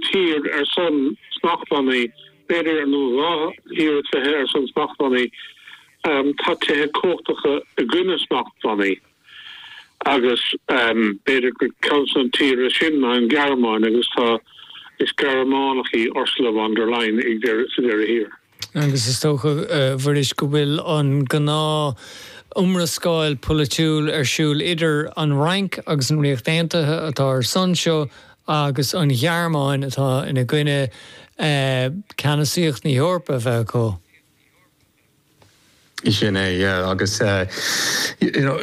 tír ar son smachtbhannaí, b'fhéidir aon nó dhá thír is fiche ar son smachtbhannaí, tá tíortha cumhachtacha i gcoinne smachtbhannaí agus b'fhéidir gur ceann de na tíortha sin ná an Ghearmáin agus tá, is Gearmánach í Ursula von der Leyen sa deireadh thiar. Agus is dócha, a Mhuiris, go bhfuil an gnáth iomrascáil pholaitiúil ar siúl idir an Fhrainc agus an Ríocht Aontaithe atá ar son seo agus an Ghearmáin atá ina gcoinne, ceannasaíocht na hEorpa a bheith acu. Sin é, yeah, agus you know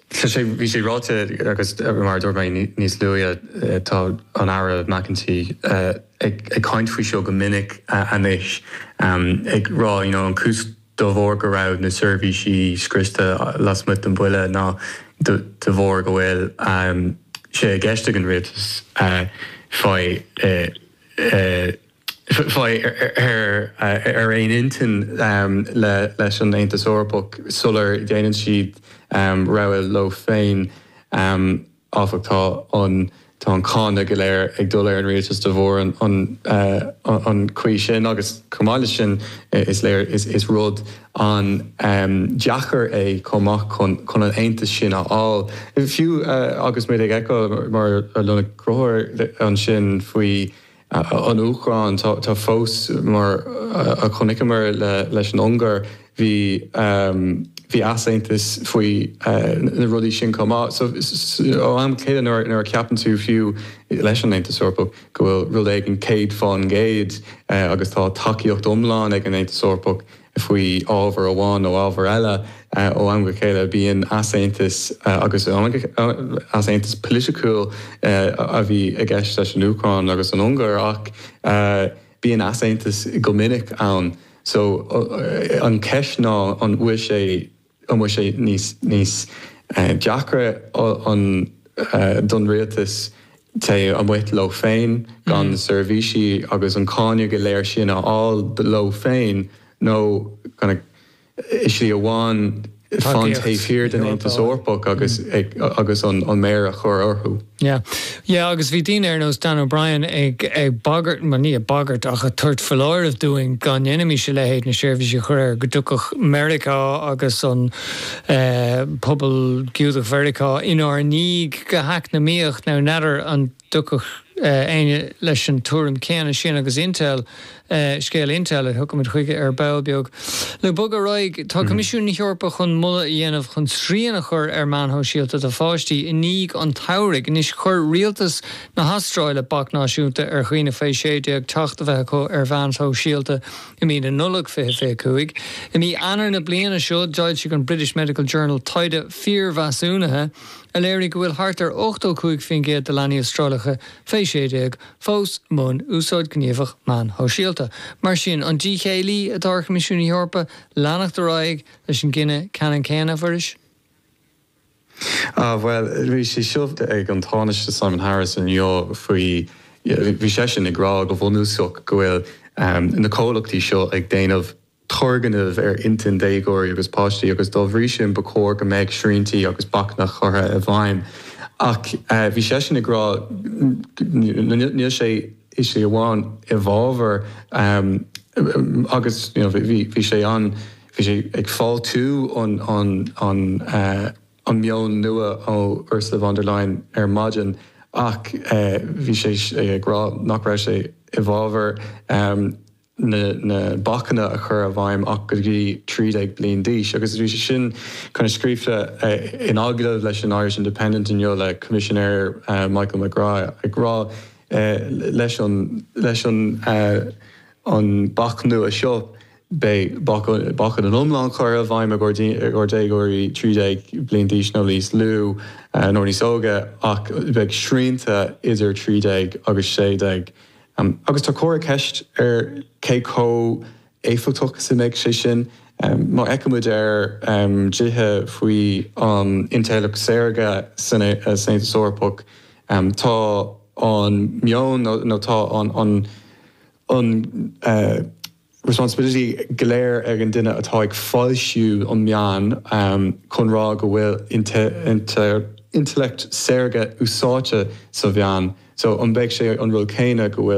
tá sé, bhí sé ráite agus mar a dúirt mé níos luaithe tá an tAire McEntee ag caint faoi seo go minic anois ag rá you know an chúis de bharr go raibh na seirbhísí scriosta lasmuigh den bhille ná de bharr go bhfuil sé i gceist ag an Rialtas fai a fáil ar aon intinn leis an Aontas Eorpach sular dhéanann siad rogha leo féin, áfach. Tá an cáineadh go léir ag dul ar an rialtas de bharr an chaoi sin agus chomh maith leis sin is léir is rud an-deacair é chomh maith chun an aontas sin a fháil. Fiú agus muid ag feiceáil mar a luaigh Crothúr ansin faoi, an Úcráin tá fós mar a chonaiceamar leis an Ungáir bhí bhí easaontas faoi na rudaí sin chomh maith so ó am go chéile nuair a cheapann tú fiú leis an Aontas Eorpach go bhfuil rud éigin céad fán gcéad agus tá tacaíocht iomlán ag an Aontas Eorpach faoi ábhar amháin nó ábhar eile. Ó am go chéile bíonn easaontas agus easaontas poiliticiúil a bhí i gceist leis an Úcráin agus an Ungáir ach bíonn easaontas go minic ann so an cheist ná an bhfuil sé an bhfuil sé níos deacra don rialtas téigh amuigh leo féin gan na seirbhísí agus an cáineadh go léir sin a fháil leo féin nó i slí amháin fan taobh thiar den Aontas Eorpach agus an mhéar a chur orthu? Yeah. Yeah agus bhí daoine ar nós Dan O'Brien ag, ag bagairt, bhuel ní ag bagairt ach ag tabhairt foláirimh dúinn dá ndéanfaimis a leithéid na seirbhísí a chur air, go dtiocfadh Meiriceá agus an eh, pobal Giúdach Mheiriceá inár ndiaidh go heacnamaíoch. Now n'fheadar an dtiocfadh eh, éinne leis an tuairim céanna sin agus Intel é scéal Intel a thiocfaimid chuige ar ball beag. Le bogadh ar aghaidh, tá Coimisiún na hEorpa chun moladh a dhéanamh chun srian a chur ar mheáin shóisialta do pháistí i ndiaidh an tsamhraidh. Anois chuir rialtas na hAstráile bac náisiúnta ar dhaoine faoi 16 teacht a bheith acu ar mheáin shóisialta i mí na Nollag 2025. I mí Eanáir na bliana seo d'fhoilsigh an British Medical Journal taighde piarmheasúnaithe a léirigh go bhfuil thart ar 85% de leanaí Astrálacha faoi 16 fós i mbun úsáid ghníomhach meán shóisialta. Mar sin, an díth céille atá ar Choimisiún na hEorpa leanacht ar aghaidh leis an gcinneadh ceannann céanna, a Mhuiris? Ah, bhuel, bhí sé suas ag an Tánaiste Simon Harris inniu faoi, bhí seisean ag rá go bhunúsach go bhfuil na comhlachtaí seo ag déanamh, turgnamh ar intinn déagóirí agus páistí agus dá bhrí sin ba chóir go mbeadh sriantí agus bacanna curtha i bhfeidhm. Ach bhí seisean ag rá níl sé i sé amháin i bhfabhar agus bhí sé an bhí sé ag fáiltiú an an an an meon nua ó Ursula von der Leyen ar maidin ach bhí sé ag rá nach raibh sé i bhfabhar. na bacanna a chur i bhfeidhm ach go dtí 13 bliain d'aois agus bhí sé sin scríofa in agallamh leis an Irish Independent inniu le Coimisinéir Michael McGrath ag rá leis an bac nua seo beidh bacanna an iomlán curtha i bhfeidhm i gcomhair déagóirí 13 bliain d'aois nó níos lú nó níos óige ach beidh srianta idir 13 agus 16. Um agus tá comhartha ceist ar cé chomh éifeachtach is a mbeidh sé sin. Um má fheiceann muid ar um dlíthe faoi an intleacht shaorga san Aontas Eorpach, um tá an meon nó tá an an an uh, responsibility go léir ag an duine atá ag foilsiú an meáin chun rá go bhfuil intellect saorga úsáidte sa mheán so an mbeidh sé an rud céanna go bhfuil